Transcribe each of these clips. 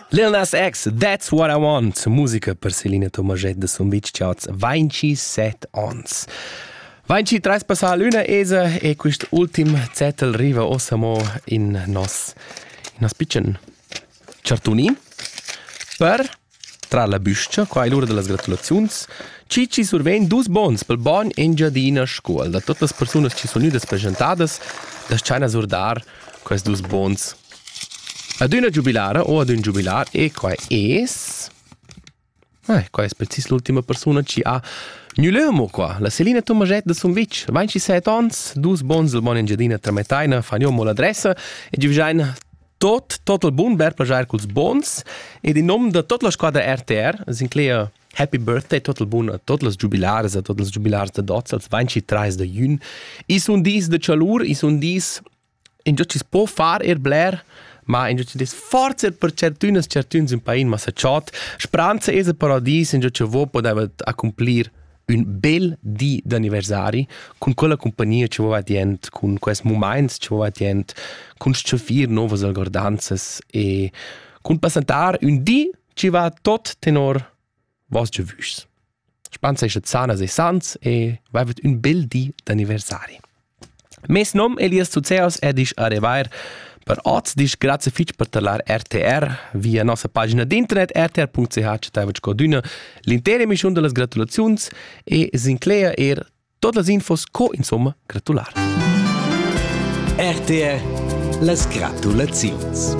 Lil Nas X, That's What I Want, musica per Selina Tomaget de Sumvitg Charts, 27 ons. 23 passà l'una esa e quist ultim zettel riva osamo in nos, in nos piccen chartuni per Tra la büscha, qua è l'ura da las gratulaziuns. Chi chi survegn dus bons pel bogn Engiadina Scuol. Da tuot las persunas chi sun gnüdas presentadas, das-chaina surdar quels dus bons. Ad üna giubilara o ad ün giubilar e qua es... Eh, qua es precis l'ultima persuna chi ha gnü lö amo qua, la Selina Tomaschett da Sumvitg, 27 ons, dus bons del bogn Engiadina trametaina, fagno amo l'adressa e giuvgiaina tot tot il bun ber plagiar culs bons ed in nom da tot la squadra RTR sinclair Happy birthday tot il bun a tot las giubilares a tot las giubilares da dots als 23 da jun i sun dis de chalur i sun dis in giò ci po far er bler ma in giò ci des forza per certünas certüns in pain ma sa chot spranza es a paradis in giò ci vo podeva accomplir ün bel di d'anniversari cun quella compagnia che va dient, cun quels moments che va dient, cun stscheffir novas algordanzas e cun passentar ün di che va tot tenor vos giavüschs. Spansa esce sanas e sans e vaivet ün bel di d'anniversari. Mes nom Elias Zuzeos e disch arrivair per oz disch grazie fitg per talar RTR via nossa pagina d'internet rtr.ch taivac codüna l'intera emissiun da las gratulaziuns e s'inclegia eir tot las infos co insomma gratular. RTR las gratulaziuns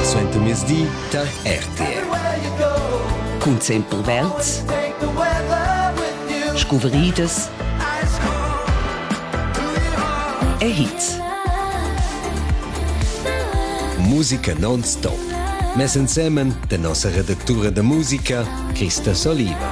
Suente mezdi tar RTR. Cun sempel Welts, scuvridas e hits. Musica non-stop. Mess ensemen de nossa redactura de musica, Christa Soliva.